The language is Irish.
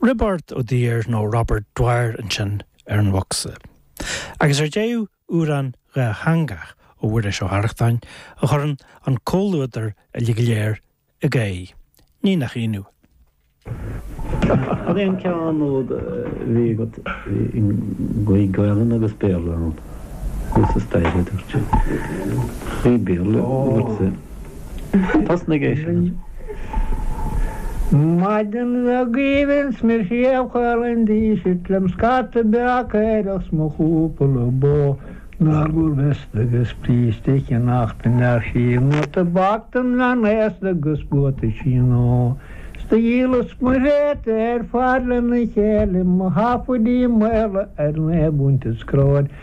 Roibeárd Ó Duír nó Robert Dwyer ansin ar an mbocsa. Agus ar deireadh amhrán dátheangach ó Mhuiris Ó hArrachtáin a chuireann an comhluadar uilig go léir ag gáire, ní nach ionadh. Cad é an ceann úd a bhí agat i ngaoth Gaelainn agus Béarla ann? Thuas staighre, a dúirt sé. Gaoth Béarla, a dúirt sé. Thosnaigh é sin. Maidin bhog aoibhinn 's mé ar fair Chill an Dísirt lem scata beag caorach 's mo chúpla bó Ar lorg veiste 'gus bríste a cheannacht dom féin nó tobac Don bhean aosta 'gus buataisí nua 'S do dhíolas mo thréada ar fad lena chéile Mo sheafaidí maola ar naoi bpunt is coróin